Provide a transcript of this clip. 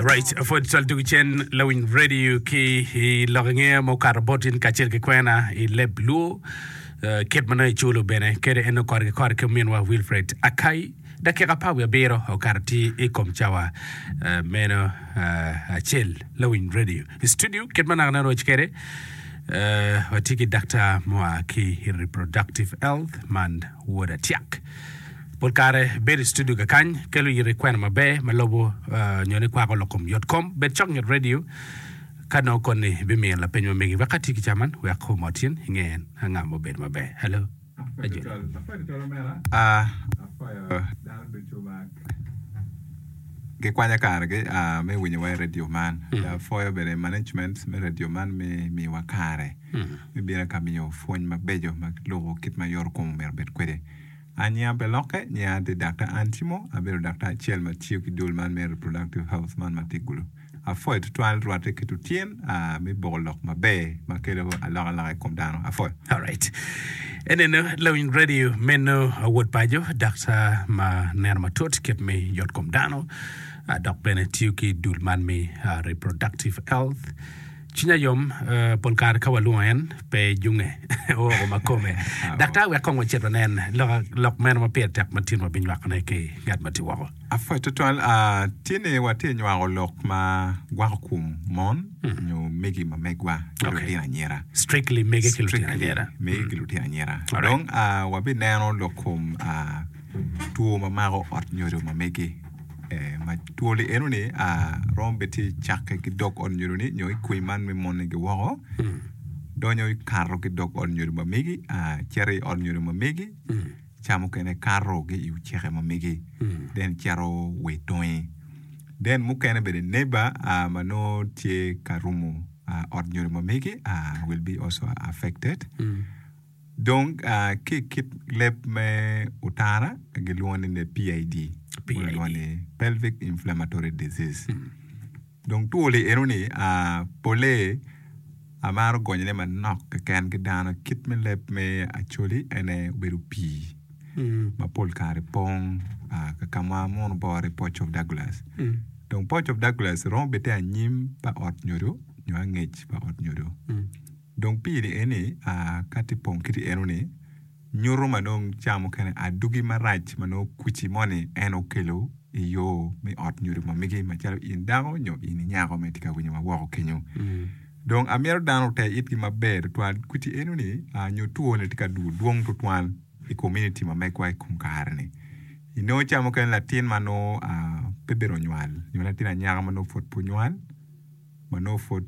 Right, Ford Sol Dugu Chen, Lawin Radio ki i lok nge ma okato bot in kacel ki kwena i leb Luo. Uh, kit manongo iculo bene kede en okor ki kor ki minwa Wilfred Akai. Dakika pa wiye abiro okato ti i kom cawa uh, meno uh, acel Lawin Radio. I studio kit manaka na roc kede uh, watye ki daktar mua ki reproductive health man Woda Tiak. Pol kare bedo i studio kakany kelo yito i kwena maber ma lobo nyo ni kwako lok kom yot kom bed cok nyo radio ka nongo koni bimiyo lapeny ma megi wek ka tye ki ca man wek omot cin inge en anga ma obedo maber. Hello. Apwoyo dano ducu ma gikwanya kargi me winyo wa i radio man. Apwoyo bene management me radio man me miwa kare me bino ka miyo pwony mabeco ma lubo kit ma yot kom omyero obed kwede. Anya pe lokke, nye an ti dakta Ann Timo, abedo dakta acel ma tiyo ki dul man me Reproductive Health man ma Tigulu. Apwoyo twatwal rwatte ki tutyen a me boko lok maber ma kelo alokaloka i kom dano. Apwoyo. Alright. Eneno lawiny radio meno awot paco, dakta ma neno matut kit me yot kom dano, dok bene tiyo ki dul man me Reproductive Health. Cwinya yom pol kare ka walwongo en, pe ejunge, ooko ma kome. Daktar wek kong wacit wanen lok, lok meno ma pire tek ma tinwa binywakone ki ngat ma tye woko. Apwoc tutwal. Tye ni watye nywako lok ma gwako kom mon nyo mege ma megwa ki Okay. lutino anyira. Strictly mege ki lutino Strictly anyira. mege ki lutino anyira. Alright. Dong ah, wabineno lok kom ah, two ma mako ot nyodo ma mege ma two ni eno ni romo bed tye cakke ki dog ot nyodo ni nyo ikwi man me mone gi woko donyo ikato ki dog ot nyodo ma megi cito i ot nyodo ma megi ca mukene kato ki i oceke ma megi then cito wa i tonge then mukene bene neba ma nongo tye ka rumo ot nyodo ma megi will be also affected. Dong ki i kit leb me otara gilwongo ni ne PID, Pelvic Inflammatory Disease. Dong two li eno ni pole amaro gonyo ne manok keken ki dano kit me leb me acholi ene obedo pii ma pol kare pong kakama muno bore Pouch of Douglas. Dong Pouch of Douglas romo bite anyim pa ot nyodo nyo angec pa ot nyodo. Dong piri eni, ka tye pong kiti enoni, nyuto ma dong ca mukene adugi marac ma nongo kuci moni en okelo i yo me ot nyo ri mamigi macalo in dako nyo in i nyako ma itye ka winyo ma woko kenyo. Dong amito dano ote itgi maber tutwal kuci enoni nyo two ni tye ka duru dwong tutwal i kominiti ma megwa i kom kare-ni. Inongo ca mukene latin ma nongo pe bene onywal nyo latin anyaka ma nongo pud pe onywal ma nongo pud